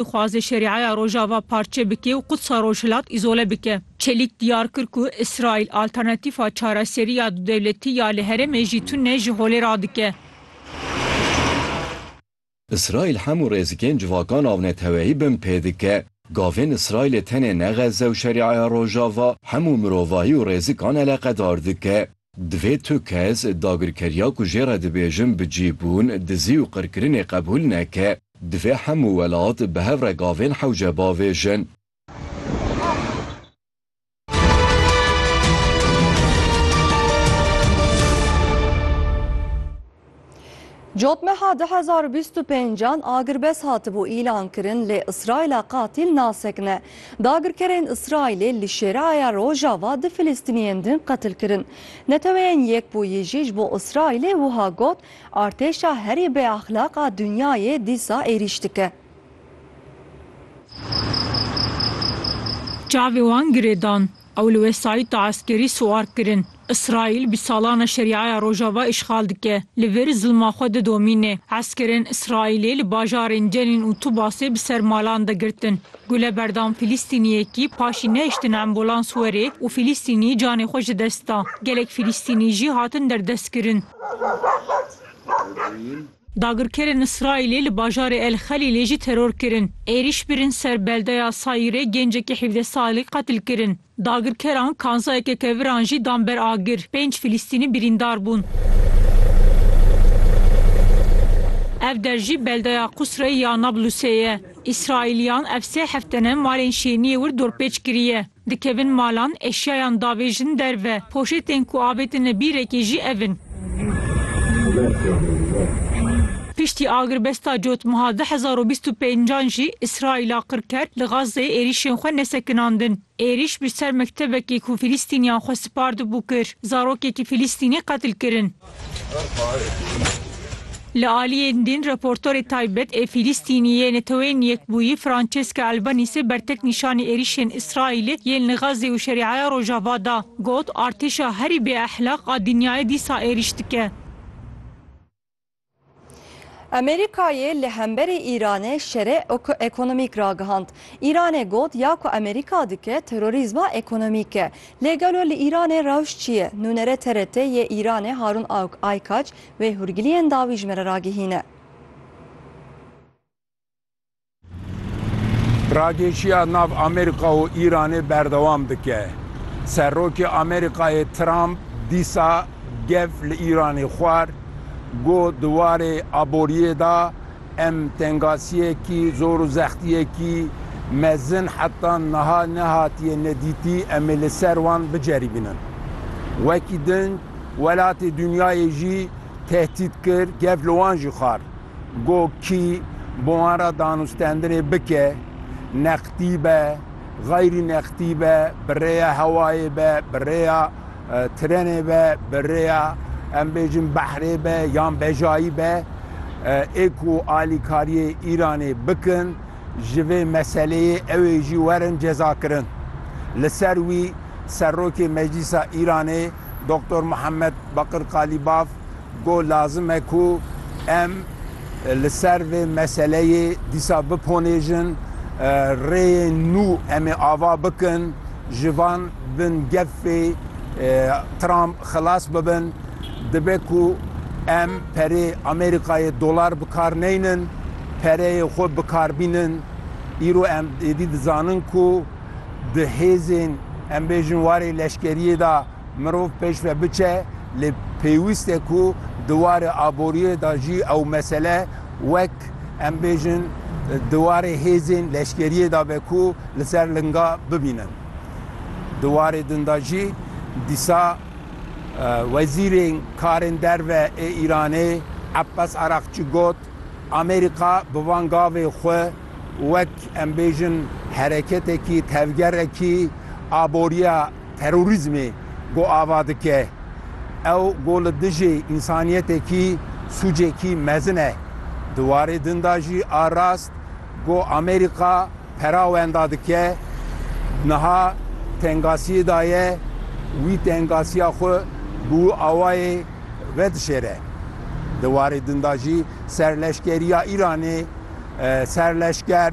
Dixwaze Şerîaya Rojava parçe bike û Qudsa Rojhilat îzole bike. Çelîk diyar kir ku Îsraîl alternatîfa çareserî ya dudewletî ya li herêmê jî tune ji holê radike. Îsraîl hemû rêzikên civakan avneteweyî bin pê dike. Gavên Îsraîlê tenê ne Xezze û Şerîaya Rojava, hemû mirovahî û rêzikan eleqedar dike. Divê tu kes, dagirkeriya ku jê re dibêjin bicîbûn, dizî û qirkirinê qebûl neke. Divê hemû welat bi hev re gavên hewce bavêjin. Cotmeha du hezar û bîst û pênc an agirbest hatibû îlankirin lê Îsraîla qatîl nasekine. Dagirkerên Îsraîlê li Şêreaya Rojava du Filistîniyên din qetil kirin. Neteweyên Yekbûyî jî ji bo Îsraîlê wiha got, Artêşa herî bêexlaq a dinyayê dîsa êrîş dike. Çavê wan girêdan. Ew li wesayîta eskerî siwar kirin. Îsraîl bi salan e Şerîaya Rojava îşxal dike. Li vir zilma xwe didomîne. Eskerên Îsraîlê li bajarên Cenîn û Tubasê bi ser malan de girtin. Gule berdan Fîlîstîniyekî paşî nehiştin ambolans were û Fîlîstînî canê xwe ji dest da. Gelek Fîlîstînî jî hatin derdestkirin. Dagirkerên Îsraîlê li bajarê El Xelîlê jî teror kirin. Êrîş birin ser beldeya Sayîrê gêncekî hîvdeh salî qetil kirin. Dagirkeran kanzayeke keviran jî dan ber agir. Pênc Filîstînî birîndar bûn. Ev der jî beldeya Qusreyê ya Nablusê ye. Îsraîliyan ev sê heftene malên şêniyê wir dorpêç kiriye. Dikevin malan, eşyayan davêjin derve. Poşêtên ku avêtine bîrekê jî ev in. Piştî agirbesta cotmeha du hezar û bîst û pênc an jî Îsraîla qir ker li Gazeyê êrîşên xwe nesekinandin. Êrîş bi ser mektebekê ku Filîstîniyan xwe spardibû kir. Zarokekî Filîstînî qetil kirin. Li aliyê din raportorê taybet ê Fîlîstînî yê Neteweyên Yekbûyî Francesca Albanîsê bertek nîşanî êrîşên Îsraîlê yên li Xazzê û Şerîaya Rojava da. Got, Artêşa herî bêexlaq a dinyayê dîsa êrîş dike. Amerîkayê li hemberî Îranê şerê ekonomîk ragihand. Îranê got ya ku Amerîka dike terorîzma ekonomîk e. Lê gelo li Îranê rewş çi ye? Nûnere TRT yê Îranê Harûn Aykaç wê hûrgiliyên dawî ji me re ragihîne. Ragêşiya nav Amerîka û Îranê berdewam dike. Serokê Amerîkayê Trump dîsa gev li Îranê xwar, got di warê aboriyê de em tengasiyekî zor û zextiyekî mezin heta niha nehatiye nedîtî em ê li ser wan biceribînin. Wekî din welatê dinyayê jî tehdît kir, gev li wan jî xwar. Go kî bo wan re danûstendinê bike, nextî be, xeyrî nextî be, bi rêya hewayê be, bi rêya tirenê be, bi rêya em bêjin behrê be yan bejayî be, ê ku alîkariyê Îranê bikin, ji vê meseleyê ew ê jî werin cezakirin. Li ser wî Serokê Meclîsa Îranê Doktor Muhammed Bakir Kalîbaf Got lazim e ku em li ser vê meseleyê dîsa biponêjin, rêyên nû em ê ava bikin, ji van bin gefê Trump xilas bibin, dibe ku em perê Amerîkayê dolar bi kar neynin, pereyê xwe bi kar bînin. Îro em êdî dizanin ku di hêzên em bêjin warê leşkeriyê de, Mirov pêş ve biçe lê pêwîst e ku di warê aboriyê de jî ew mesele wek em bêjin di warê hêzên leşkeriyê de be ku li ser linga bibînin. Di warê din de jî dîsa Wezîrên Karên Derve ê Îranê Abbas Araqçî got, Amerîka bi van gavê xwe wek em bêjin hereketekî tevgerekî aboriya, Terorîzmê ku ava dike, ew ku li dijî însanîyetekî sûcekî mezin e. Di warê din de jî a rast ku Amerîka pera wenda dike, niha tengasîyê de ye, wî tengasîya xwe bi wî awayê vedişêre. Di warê din de jî serleşkerîya Îranê, serleşker,